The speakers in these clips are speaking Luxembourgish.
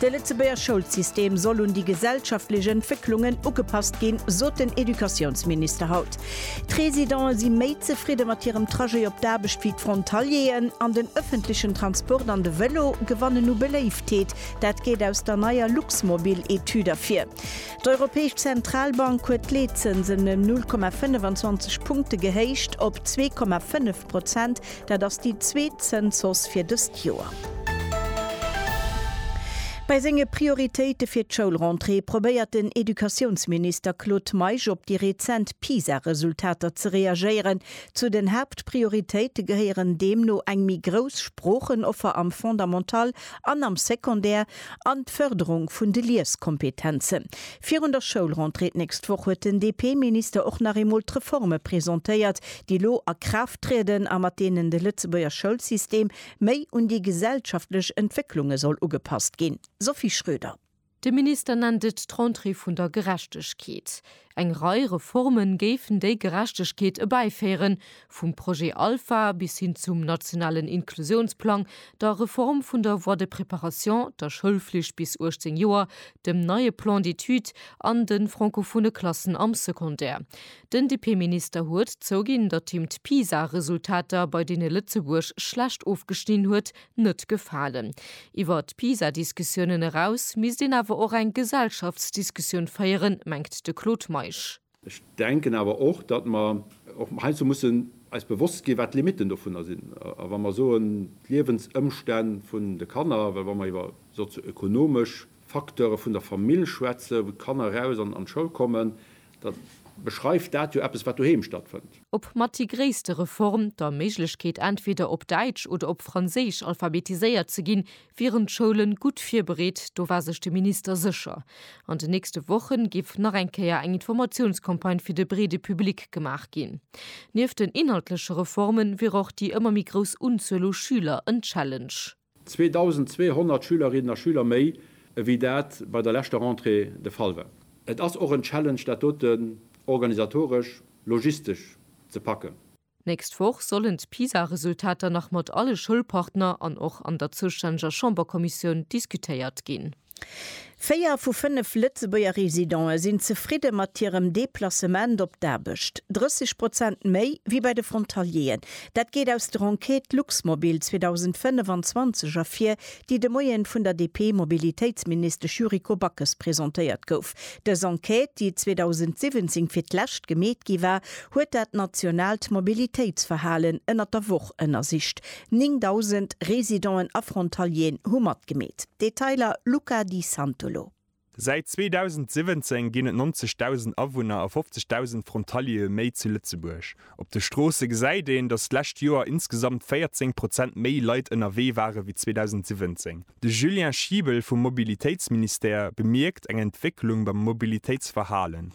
De Lëtzebuerger Schoulsystem soll un déi gesellschaftlech Entwécklungen ugepasst ginn, sot den Educatiounsminister haut. D'Residente si méi zefridde mat hirem Trajet op d'Aarbecht wéi d'Frontalieren an den ëffentlechen Transport an de Vëlo gewannen u Beléiftheet. Dat geet aus der neier Luxmobil-Etüd ervir. D'Europäesch Zentralbank huet d'Leetzënsen ëm 0,25 Punkte gehéicht op 2,5. 8 Prozent. Dat ass déi zweet Zënzhausse fir dëst Joer. Bei senge Prioritéite fir d'Schoulrentrée probéiert den Educatiounsminister Claude Meisch op déi rezent PISA-Resultater ze reagéieren. Zu den Haaptprioritéite gehéieren deemno eng méi grouss Sproochenoffer am Fondamental an am Secondaire an d'Fërderung vun de Lieskompetenzen. Virun der Schoulrentrée d'nächst Woch huet den DP-Minister och nach eemol d'Reforme presentéiert, déi elo a Kraaft trieden a mat deenen de Lëtzebuerger Schoulsystem méi un déi gesellschaftlech Entwécklunge soll ugepasst ginn. Sophie Schröder. De Minister nennt et d'Rentrée vun der Gerechtegkeet. Eng Rei Reforme géifen déi Gerechtegkeet ebäiféieren, vum Projet Alpha bis hin zum nationalen Inklusiounsplang, der Reform vun der Voie de préparation, der Schoulflicht bis 18 Joer, dem neie Plan d'études an de francophone Klassen am Secondaire. Den DP-Minister huet zouginn, datt him d'PISA-Resultater, bei deene Lëtzebuerg schlecht ofgeschnidden huet, net gefalen. Iwwer d'Pisa-Diskussiounen eraus misst een awer och eng Gesellschaftsdiskussioun féieren, mengt de Claude Meisch. Ech denken awer och, datt mer och heiansdo mussen eis bewosst ginn, wat d'Limitten dovunner sinn. A wa mer soen, d'Liewensëmstänn vun de Kanner, well wa mer iwwer sozio-ökonomesch Facteure vun der Famill schwätzen, wou d'Kanner eraus an d'Schoul kommen, Da beschreift dat jo eppes, wat doheem stattfënnt. Ob mat déi gréisste Reform, der Méiglechkeet entweder op Däitsch oder op Franséisch alphabetiséiert ze ginn, wieren d'Schoulen gutt virbereet, do war sech de Minister sécher. An den nächste Wochen géif nach eng Kéier eng Informatiounscampagne fir de breede Public gemaach ginn. Nieft den inhaltleche Reformen wier och déi ëmmer méi grouss Unzuel u Schüler en Challenge. 2.200 Schülerinnen a Schüler méi, ewéi dat bei der leschter Rentrée de Fall war. Et ass och en Challenge, dat doten organisatoresch, logistesch ze packen. D'nächst Woch sollen d'PISA-Resultater nach mat alle Schoulpartner an och an der zoustänneger Chamberkommissioun diskutéiert ginn. Véier vu fënnef Lëtzebuerger Residente sinn zefridde mat hirem Deplacement op d'Aarbecht. 30 Prozent méi wéi bei de Frontalieren. Dat geet aus der Enquête Luxmobil 2025 ervir, déi de Moien vun der DP-Mobilitéitsministesch Yuriko Backes presentéiert gouf. Dës Enquête, déi 2017 fir d'lescht gemeet gi war, huet dat nationaalt Mobilitéitsverhalen ënnert der Woch ënnersicht. 9.000 Residenten a Frontalieren hu matgemeet. Detailer, Luca Di Santolo. Säit 2017 ginn et 90.000 Awunner a 50.000 Frontaliere méi zu Lëtzebuerg. Op de Stroosse gesäit een, datt d'lescht Joer insgesamt 14 Prozent méi Leit ënnerwee ware wéi 2017. De Julien Schiebel vum Mobilitéitsministère bemierkt eng Entwécklung beim Mobilitéitsverhalen.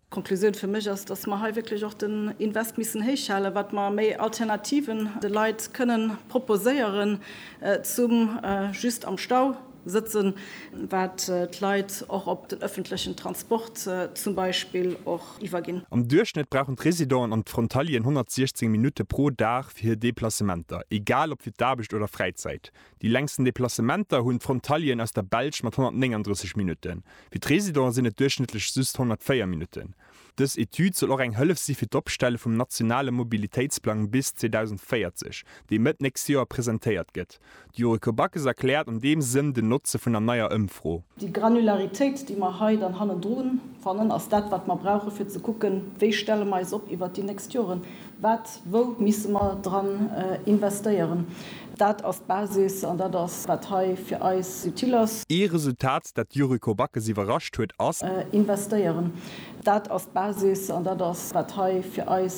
D'Konklusioun fir mech ass, dass mer hei wierklech och den Invest missen héich halen, wat mer méi Alternativen de Leit kënnen proposéieren, zum just am Stau sëtzen, wat d'Leit och op den öffentlechen Transport zum Beispill och iwwerginn. Am Duerchschnëtt brauchen d'Residenten an d'Frontalieren 116 Minutte pro Dag fir hir Deplacementer, egal ob fir d'Aarbecht oder Fräizäit. Déi längsten Deplacementer hunn d'Frontalieren aus der Belsch mat 139 Minutten. Fir d'Residenten sinn et duerchschnëttlech just 104 Minutten. Dës Etüd soll och eng Hëllef si fir d'Opstelle vum nationale Mobilitéitsplang bis 2040, dee Mëtt nächst Joer presentéiert gëtt. D'Yuriko Backes erkläert an deem Sënn den Notze vun der neier Ëmfro. Déi Granularitéit, déi mer hei dann hannendru fannen, ass dat, wat mer brauchen, fir ze kucken, wéi stelle mer eis op iwwert déi nächst Joren. Wat, wou misse mer dran investéieren? Dat ass d'Basis an dat ass, wat hei fir eis utile ass. Ee Resultat, dat d'Yuriko Backes iwwerrascht huet, ass. Investéieren. Dat ass d'Basis an dat ass, wat hei fir eis.